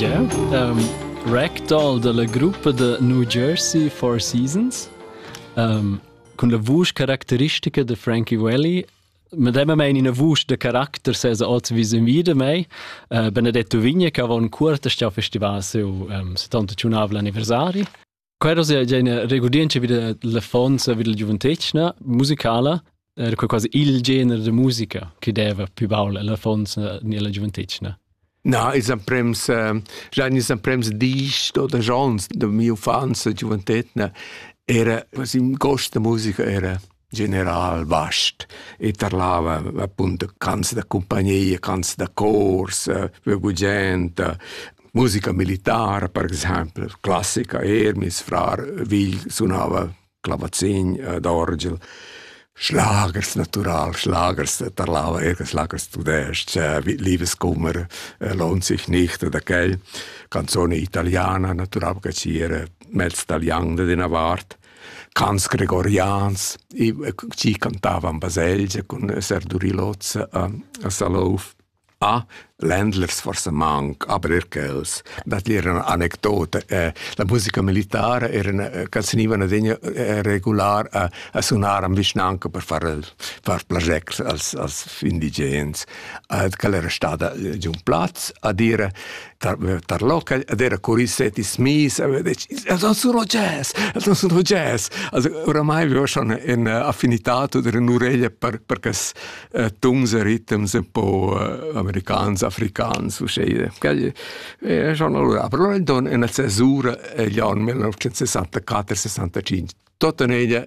Yeah, um, ragdoll dalla gruppa da New Jersey Four Seasons um, cun la vusch caracteristica de Frankie Welly medemma mein ina vusch de caracter se sa oz wie sin wieder mei uh, benedetto vigna che avon cuorta sta festival seu um, 70 anniversari Quero sia gena regurdientscha vid l'affonza vid la giuventetgna musicala era quei quasi il gener de musica che deva più baul l'affonza ni la giuventetgna. Na, is emprems, uh, già is emprems disch oder Jons de mia infanzia giuventetna era, was im Gost der Musiker era. general vast e tarlava appunto canzoni da compagnia, canzoni da cors, eh, gugent, musica militare per esempio, classica er, mis frar Vigl suonava clavazin eh, d'orgel. Schlagers natural, Schlagers tarlava er Schlagers tudest, Liebeskummer eh, lohnt sich nicht oder quel, canzone italiana natural che ci era mezz italiano de Navarre Cants gregorians, i chi cantavan baselgia cun esser duri l'hoz a a Salouf. A ländlers forsa manc, aber eir quels. Dat era üna anecdota. Eh, la musica militara era üna ca senivan adegna eh, regular a a sunar am vischnanca per far el far plagier als als indigens. Ed quella era stada già un plaz a dire tar local ed era curiset is mis a vedec els han sun jazz els han sun jazz also oramai vivo schon in affinità oder in ureglia per per cas tuns e ritms un po americans africans uscei quel è schon allora però in don in la cesura gli anni 1964 65 tota ella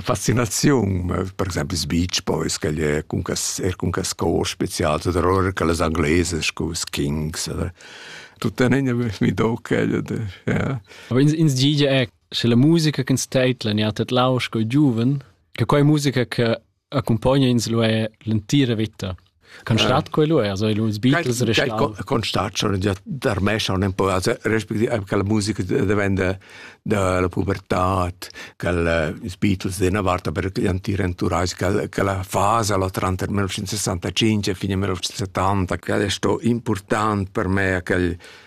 fascinaziun per exempel ils beach boys che è cun cas er cun cas cor specials oder oder che les angleses con ils kings oder tutta negna mi do quella de ja aber ins ins gige è sche la musica che steitla ni hat et lausch coi giuven che quei musica che accumpogna ins lu er l'entira veta. Con stat quello è, also los Beatles restal. Con stat schon già tarmescia un po', also respektive che la musica diventa della pubertà, che i Beatles della volta per gli anti-renturais, che la fase la tra 1965 e fine 1970, che è stato importante per me, che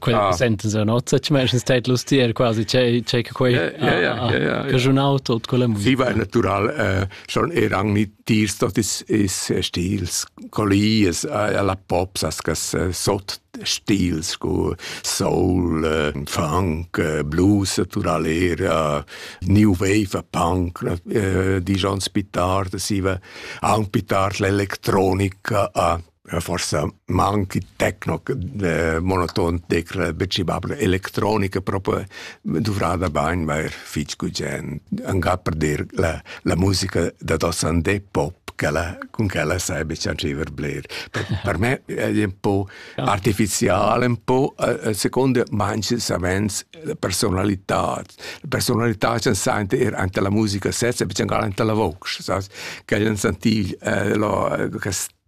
quel ah. senten se nozza ci mesch stait lustier quasi che che quei casonau tot con la musica si war natural äh, schon er ang ni tirs tot is is stils collies alla pops as gas sot stils cu soul funk blues naturalera new wave punk di John Spitard siva ang Pitard l'elettronica a forsa manchi techno monoton tecla becibabla electronica proprio duvrada bain vair fitch gugent angà per dir la, la musica da dosan de pop quella, con quella sai beccianciver bler. Per, per me è un po' artificiale, un po' eh, eh, secondo manche savens la personalità. La personalità c'è sente er anche la musica stessa, becciangal anche la voce, sas? Che jan sentil eh, lo, eh,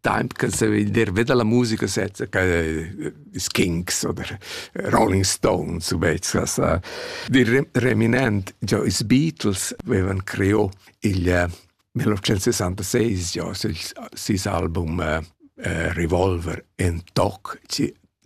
Temps che se il dervet dalla musica sezza che is Kinks oder Rolling Stones ubezzas. Il reminent, già is Beatles avevan creò il 1966 già ses album uh, Revolver en toc,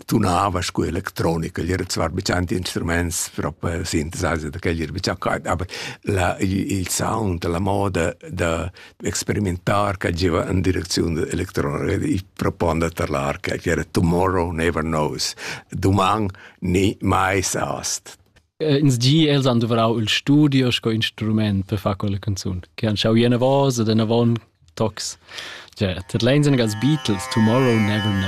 tunava sco electronica, era zwar be tanti instruments proprio synthesizer da quel era be quai, aber la, il sound, la moda da experimentar che giva in direcziun electronica, ich proponde tar l'arca, che era tomorrow never knows, doman ni mai sast. Eh, ins gi els han duvrau il studio sco instrument per far quella canzun, che han schau jena vosa, den avon tocs. Cioè, tat leins als Beatles, Tomorrow Never Knows.